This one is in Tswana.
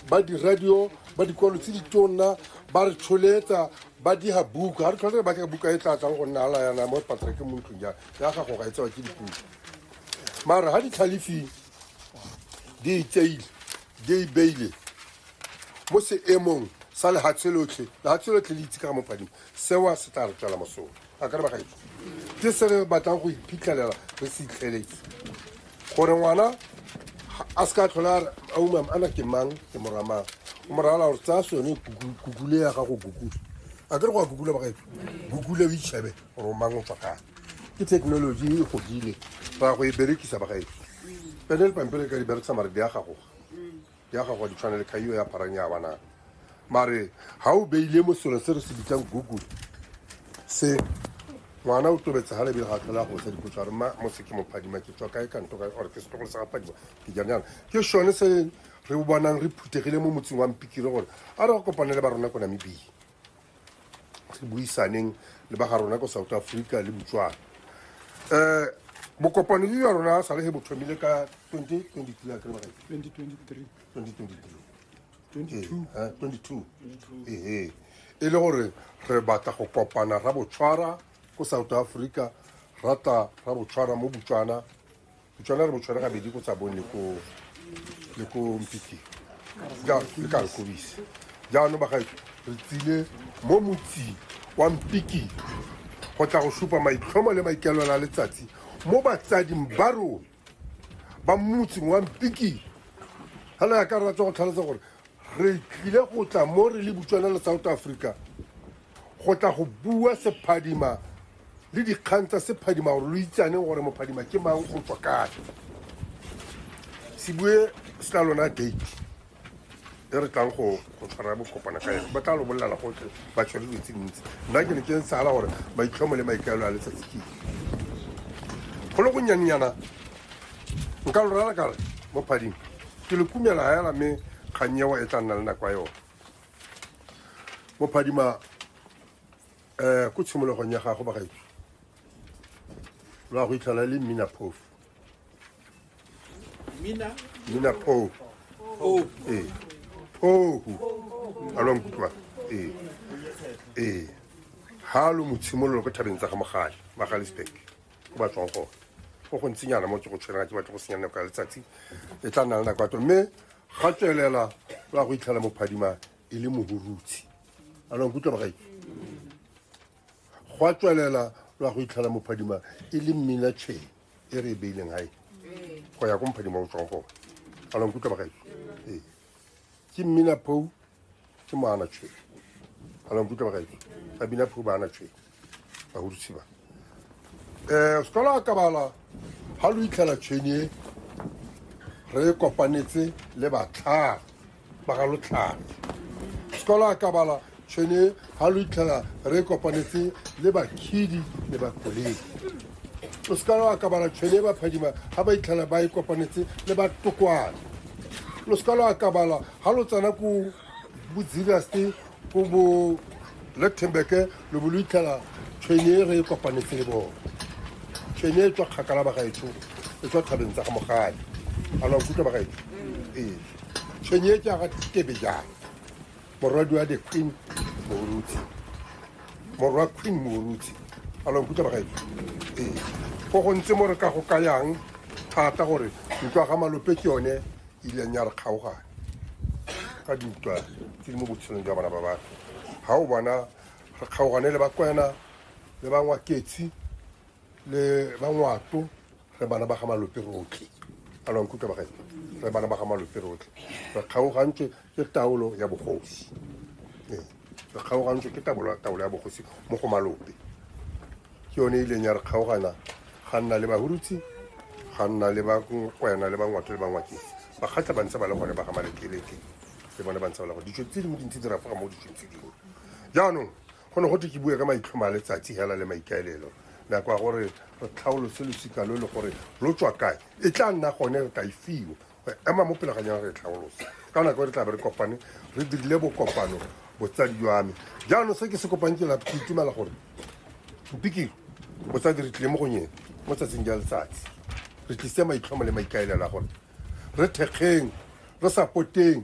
ba diradio ba dikwalo tse ditonna ba re tsholetsa ba diga buka ga re tlhole ba ka buka e tla tlang go nna ala yana mo patrake mo ntlong ja ya gago ga e tsewa ke dipuka mara ga ditlhalefing di itseile di ibeile mo seemong sa lehatshe lotlhe lehatshe lotlhe le itse ka ga mopadimo sewa se tla re tswela mosola a ka re bagaetso ke se re batlang go iphitlhelela re se itlheletse gore ngwana a se ka tlhola a umam ana ke mang ke morwa mang o morala gore tsaya sone kukule ya gago kukule a ke re go a kukula bagaetso kukule o itšhebe gore o mang o tswa kang ke thekenoloji e godile ra go e berekisa bagaetso pene le pampele ka di berekisa maredi a gagoga ya gago di tshwana le khaio ya pharang ya banana mare ga o beile mo selo se re se bitsang google se ngwana o tobetse ga lebile ga tlhola go sa dipotso a re ma mo se ke mophadima ke tswa kae kanto kae or ke setlogolo sa gaphadima ke jang jana ke sone se re bonang re phuthegile mo motseng wa mpikire gore a re go kopane le ba rona ko namibia re buisaneng le ba ga rona ko south africa le botswana um bokopano jo jwa rona sa le ge bo thomile ka 2022 ee e le gore re batla go kopana ra botshwara ko south africa rata ra botshwara mo botswana o tshwana re botshware gabedi ko tsabong le ko le ko mpiking jalo le ka re kobise jaanong bagaetso re tsile mo motsing wa mpiking go tla go supa maitlhomo le maikaelelo a letsatsi mo batsading ba rona ba motseng wa mpiking fela ya ka ratsa go tlhalosa gore re tlile go tla mo re le butswana le south africa go tla go bua sephadima le dikgang tsa sephadima gore lo itsaneng gore mophadima ke mang o tswa kae se bue se tla lona date e re tlang go tshwara bokopana ka yone ba tla lo bolelela gotlhe ba tshwere dilo tse dintsi nna ke ne ke tsala gore maitlhomo le maikaelo a letsatsi ke go le gonnyanyana nka lo rara kare mophadima ke le kumela hela mme kgannyewa e tla nna le nako ya yone mo phadima um ko tshimologong ya gago bagaetso lwa go itlhela le mmina phofu Mina. mmina phofu Oh. ee phofu a lwa nkutlwa ee ee ga lo mo tshimololo ko thabeng tsa ga mogale magalisburg ke ba tswang gone go go ntsinyana mo ke go tshwereng ga ke batle go senya nako ya letsatsi e tla nna le nako ya to mme ga tswelela ba go itlhela mophadima e le mohurutsi a nang kutlwa bagai go a tswelela ba go itlhela mophadima e le mmina chain e re e beileng gae go ya ko mophadima o tswang gone a nang kutlwa bagai ee ke mmina phou ke moana tshwe ana nkutlwa bagaetso ga bina phou baana tshwe bagodisi ba um eh, sekola a kabala ga lo itlhela tshwenye re kopanetse le batlhagi ba ga lotlhagi sekola a kabala tšhwene ga lo itlhela re kopanetse le bakhidi le bakoledi o se ka lo akabala tšhwene e baphadima ga ba itlhela ba e kopanetse le batokwane lo se ka lo akabala ga lo tsena ko bodziraste ko bo lethenbeke lo bo lo itlhela tšhwene e re e kopanetse le bone tšhwene e tswa kgakala bagaetsho e tswa thabeng tsa ga mogadi a la nkutlwa bagaetsho ee tšhwene e ke aga tebe jang morwadia the queen moruti morwa queen moruti a lonkuta bagaetso ee go gontse mo re ka go kayang thata gore ntwa ga malope ke yone e ileng ya re kgaogane ka dintwa tse di mo botshelong jwa bana ba batho ga o bona re kgaogane le bakwena le bangwaketsi le bangwato re bana ba ga malope rotlhe a lo nkutlwa ba gae re bana ba ga malope rotlhe re kgaogantswe ke taolo ya bogosi ee re kgaogantswe ke taolo ya bogosi mo go malope ke yone e ileng ya re kgaogana ga nna le bahurutsi ga nna le bakwena le bangwato le bangwakeng bakgatlha ba ntse ba le gone ba ga malekeleke le bone ba ntse ba le gone ditso tse dingwe dintsi di rafoga mo ditsong tse dingwe jaanong Go ne go twe ke bue ka maitlhomo a letsatsi hela le maikaelelo. Nako ya gore re tlhaolose losika lo le gore lo tswa kae e tla nna gone re tla e fiwa go ema mo pele ga nyana re e tlhaolose ka nako e re tla be re kopane re dirile bokopano botsadi jwa me jaanong se ke se kopang ke lapo ke itumela gore mpikiro botsadi re tlile mo go nyene mo tsatsing ja letsatsi re tlise maitlhomo le maikaelela gore re thekgeng re sapoteng